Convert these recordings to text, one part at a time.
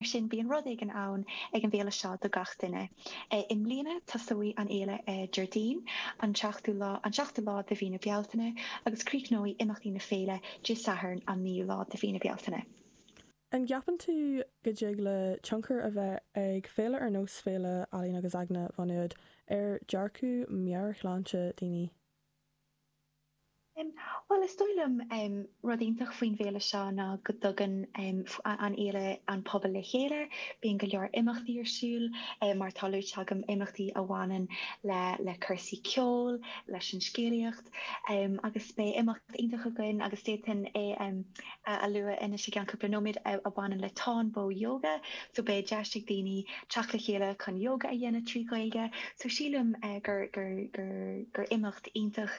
Mar sin, bíonn rud éigin ann ag an bhféile seo do gach duine. I mbliana tosóidh an fhéile ar Déardaoin an tseachtú lá, an seachtú lá de mhí na Bealtaine agus críochnóidh imeachtaí na féile Dé Sathairn an naoú lá de mhí na Bealtaine. An gceapann tú go dtig le tionchar a bheith ag féile ar nós Féile Ealaíon agus Aigne Mhá Nuad ar dhearcadh meabhairshláinte daoine? Bhuel is dóigh liom rud iontach faoin bhféile seo ná go dtugann an fhéile an pobal le chéile. Bíonn go leor imeachtaí ar siúl, mar atá luaite agam, imeachtaí a bhaineann le cúrsaí ceoil, leis an scéalaíocht agus beidh imeacht iontach againn agus d'fhéadfainn é a lua anois i gceann cúpla nóiméad a bhaineann le Táin Bó Ióga so beidh deis ag daoine teacht le chéile chun ióga a dhéanamh trí Ghaeilge so sílim gur imeacht iontach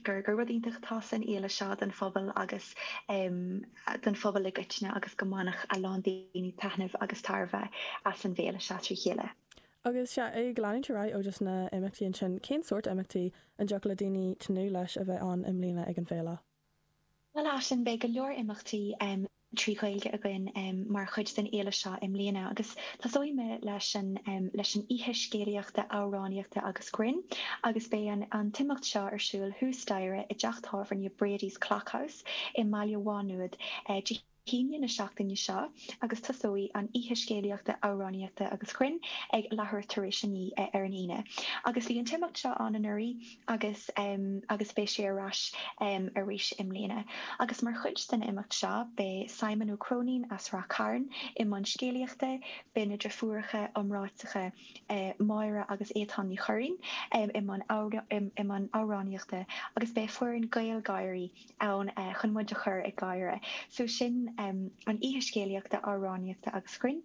gur gur rud iontach atá san fhéile seo don phobal agus don phobal i gcoitinne agus go mbainfeadh a lán daoine taitneamh agus tairbhe as an bhféile seo trí chéile. Agus sea, ag leanúint ar aghaidh ó just na imeachtaí ansin, cén sórt imeachtaí a dtiocfadh le daoine tnúth leis a bheith ann i mbliana ag an bhféile? Bhuel Aisling, beidh go leor imeachtaí trí Ghaeilge againn mar chuid den fhéile seo i mbliana agus tosóidh mé leis an, leis an oíche scéalaíochta, amhránaíochta agus grinn agus beidh an t-imeacht seo ar siúl thuas staighre i dteach tábhairne Brady's Clock House i mBaile Mhá Nuad Dé hAoine na seachtaine seo agus tosóidh an oíche scéalaíochta, amhránaíochta agus grinn ag leathuair tar éis a naoi ar an Aoine. Agus bhí an t-imeacht seo ann anuraidh agus agus beidh sé ar ais arís i mbliana. Agus mar chuid den imeacht seo beidh Simon Ó Cróinín as Rath Cairn i mbun scéalaíochta, beidh na deirfiúracha iomráiteacha Máire agus Étáin Ní Churraoin i mbun amhránaíochta agus beidh foireann GaelGÁIRÍ ann chun muid a chur ag gáire. So sin an oíche scéalaíochta, amhránaíochta agus grinn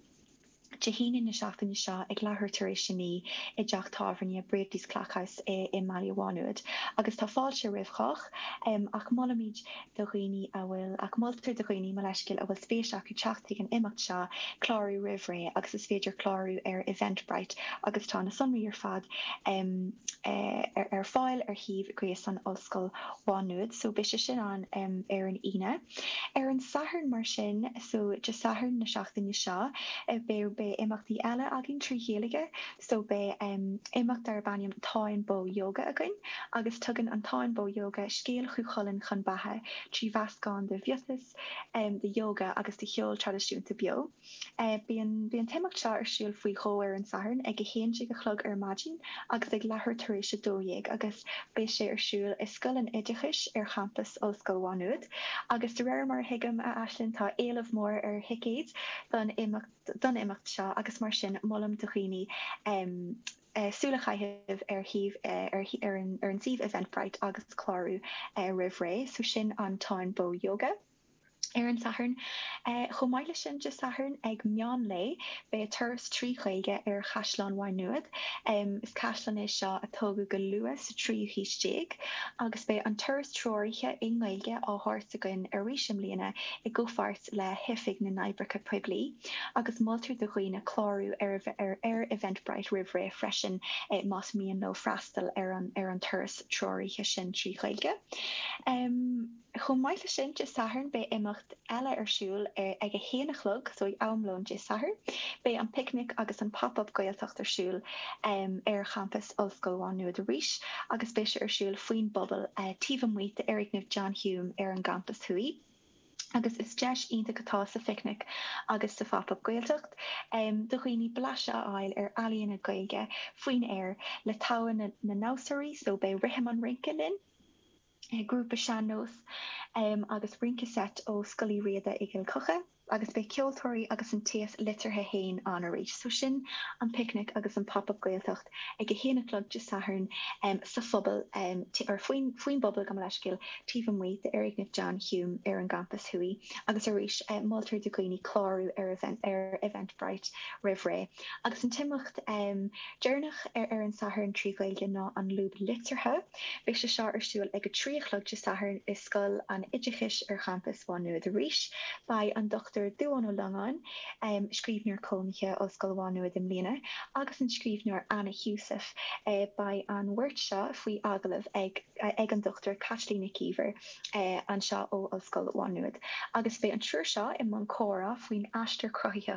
Dé hAoine na seachtaine seo ag leathuair tar éis a naoi i dteach tábhairne Brady's Clock House i mBaile Mhá Nuad agus tá fáilte roimh chách ach molaimid do dhaoine a bhfuil ach moltar do dhaoine, mo leithscéal, a bhfuil spéis acu teacht ag an imeacht seo clárú roimh ré agus is féidir clárú ar Eventbrite agus tá na sonraí ar fad em ar fáil ar shuíomh gréasáin Ollscoil Mhá Nuad so beidh sé sin ann em ar an Aoine. Ar an Satharn mar sin so Dé Sathairn na seachtaine seo eh beidh beidh imeachtaí eile againn trí Ghaeilge so beidh em imeacht darb ainm Táin Bó Ióga againn agus tugann an Táin Bó Ióga scéal Chú Chulainn chun beatha trí mheascán de mhiotas, em de ióga agus de cheol traidisiúnta beo. Beidh an t-imeacht seo ar siúl faoi dhó ar an Satharn, ag 11 a chlog ar maidin agus ag leathuair tar éis a dó dhéag agus beidh sé ar siúl i Scoil an Oideachais ar champas Ollscoil Mhá Nuad agus de réir mar a thuigim, a Aisling, tá éileamh mór ar thicéid don imeacht seo agus mar sin molaim do dhaoine súil a chaitheamh ar shuíomh Eventbrite agus clárú roimh ré. So sin an Táin Bó Yoga. ar an Satharn. Chomh maith le sin Dé Sathairn ag meán lae beidh turas trí Ghaeilge ar Chaisleán Mhaigh Nuad. Is caisleán é seo a tógadh go luath sa tríú haois déag agus beidh an turas treoraithe i nGaeilge á thabhairt againn arís i mbliana i gcomhpháirt le hOifig na nOibreacha Poiblí agus moltar do dhaoine clárú ar ar Eventbrite roimh ré freisin más mian leo freastal ar an turas treoraithe sin trí Ghaeilge. Chomh maith le sin Dé Sathairn beidh imeacht eile ar siúl ag a haon a chlog, so ag am lóin Dé Sathairn, beidh an Picnic agus an Pop Up Gaeltacht ar siúl ar champas Ollscoil Mhá Nuad arís agus beidh sé ar siúl faoin bpuball taobh amuigh d'fhoirgneamh John Hume ar an gcampas thuaidh agus is deis iontach atá sa Phicnic agus sa Phop Up Gaeltacht do dhaoine blaiseadh a fháil ar ealaíona Gaeilge faoin aer le togha na ndamhsóirí so beidh rithim an rince linn. grúpa sean-nós agus rince seit ó Scoil Uí Riada i gCill Choca agus beidh ceoltóirí agus an t-aos liteartha fhéin ann arís so sin An Picnic agus an Pop Up Gaeltacht ag a haon a chlog Dé Sathairn sa phuball or faoin bpuball gabh mo leithscéal taobh amuigh d'fhoirgneamh John Hume ar an gCampas Thuaidh agus arís moltar do dhaoine clárú ar Eventbrite roimh ré agus an t-imeacht deireanach ar an Satharn trí Ghaeilge ná An Lúb Liteartha. Beidh sé seo ar siúl ag a trí a chlog Dé Sathairn i Scoil an Oideachais ar champas Mhá Nuad arís. Beidh an Dr. Dubhán Ó Longáin, scríbhneoir cónaithe, Ollscoil Mhá Nuad i mbliana, agus an scríbhneoir Anna Heussaff. Beidh an bheirt seo faoi agallamh ag ag an Dr. Caitlín Nic Íomhair anseo ó Ollscoil Mhá Nuad agus beidh an triúr seo i mbun comhrá faoin aistear cruthaitheach